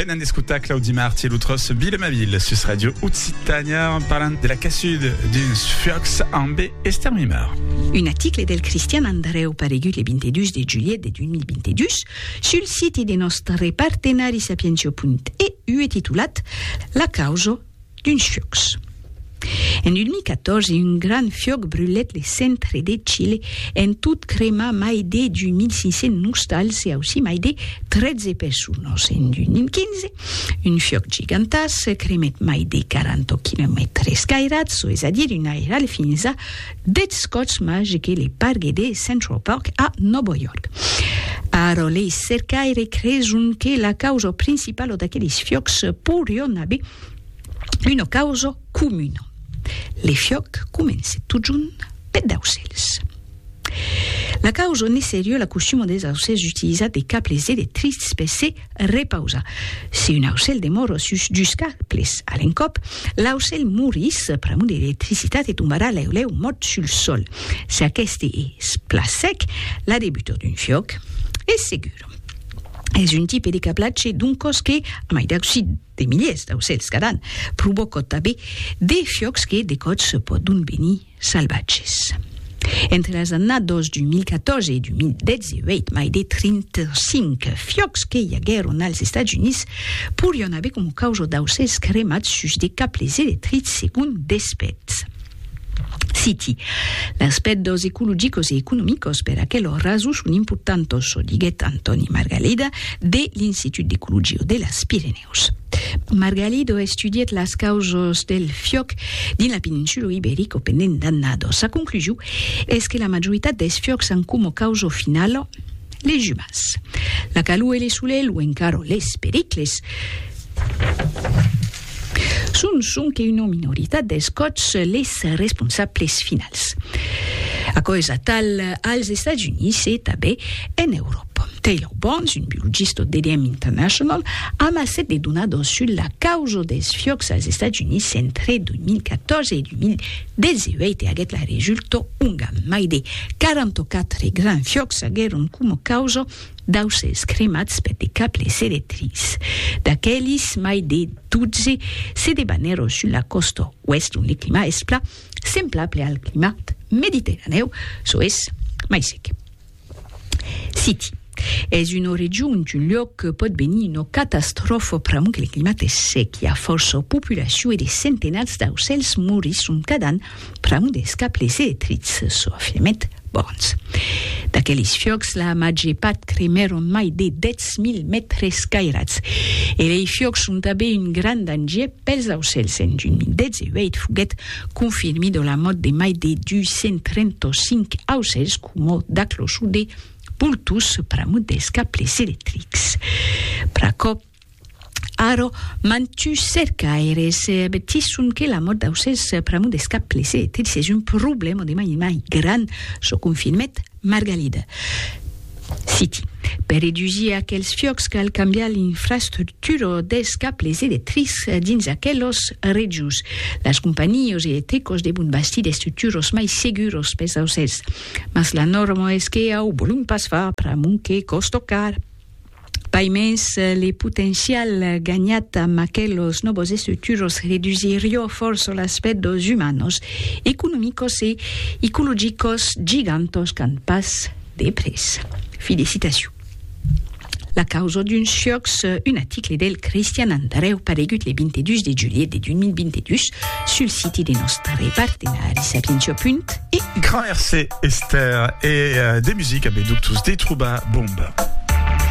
Venen d'escutar Claudi Marti e lo tros Vila ma Vila sus Radio Occitània parlant de la caçuda d'uns fuòcs amb estermimar. Un article del Cristian Andreu paregut le 22 de julhet de 2022 sul siti de nòstre partenari sapientio.eu e titulat La causa d'uns fiòcs. En 2014, un grand fiòc brulèt le centre de Chile, en tot cremar mai de 2.500 nostals e aussí mai de 13 personas. En 2015, un fiòc gigantàs cremèt mai de 40 quilomètres cairats, çò es a dire un airal fins a 10 còps màger que le pargue de Central Park a Nòva York. Ara, lei cercaires creson que la causa principala d'aqueles fiòcs porián aver Una causa comuna. Le fiòc comence totjorn peth d'aucèls. La causa ne seriu la costuma des aucèls d'utilizar de cables electrics per se repausar. Si un aucèl demora sus dus cables a l'encòp, l'aucèl morís pr'amor de l'electricitat e tombarà lèu-lèu mòrt sul sòl. Si aqueste es plan sec, la debuta d'un fiòc es segura. Es un tipe de cablatge doncòs que, a mai d'aucit, De miliers d'aucèls cada an provocò tanben de fiòcs que de còps pòdon venir salvatges. Entre las annadas 2014 e 2018, mai de 35 fiòcs que i aguèron als Estats Units porián aver coma causa d'aucèls cremats sus de cables electrics, segon d'expèrts. Citi, Las pèrdós ecologicos e economicos per aquelò raso son importantos, diguèt Antòni Margalido de l'Institut d'Ecologia de las Pirenèus. Margalido estudièt las causas del fiòc dins la peninsula Iberica pendent d'annadas. Sa conclusion es que la majoritat dels fiòcs an coma causa finala, Les jubas. La calor e le solelh o encara les pericles son sonque una minoritat dels còps les responsables finals. Aquò es atal als Estats Units e tanben en Euròpa. Taylor Barnes, un biologista d'EDM International, amassèt de donadas sus la causa dels fiòcs als Estats Units entre 2014 e 2015. Del zeuèite aguèt la resulto onga mai de 44 gran fiòcs aguèron coma causa d'aucèls cremats per de cables electrics. D'aquelis, mai de 12 se debanèron sus la còsta oèst ont le climat es plan semblable al climat mediterranèu, çò es, mai sec. City. Es una region, un luòc que pòt venir una catastròfa pr'amor que le climat es sec, i a fòrça populacion e de centenats d'aucèls morisson cada an pr'amor dels cables electrics, çò afirmèt Burns. D'aqueles fiòcs, la màger part cremèron mai de 10.000 mètres cairats. E lei fiòcs son tanben un grand danger Pels aucèls en juni 18 foguèt confirmido la mòrt de mai de 235 aucèls coma d'aclosude, pultús, pramudèls, caplèrs electrics. Pr'aquò, ara, mantuns cercaires avertisson que la mòrt d'autcèls, pramudèls, caplèrs electrics es un problèma de mai en mai grand, çò confirmèt Margalida. Citi. Per redusir aquels fiòcs cal cambiar l'infrastructura dels cables electrics dins aquelos rejos. Las companhios electricos devon bastir d'estructuras mai seguras pels aucèls. Mas la nòrma es que au volum pas far pr'amont que còsta car. Pas mens, le potencial ganhat amb aquelos nòvos estructuros redusirió fòrça l'aspèct dos umanos, economicos e ecologicos gigantos qu'an pas de prés. Fi de citacion. La causa d'un siòcs, un article del Cristian Andrèu paregut le 22 de julhet de 2022 sul siti de nòstre partenari Sapientia Punt e. Grand Mercé Esther e de musica be ductus de trobar bomba.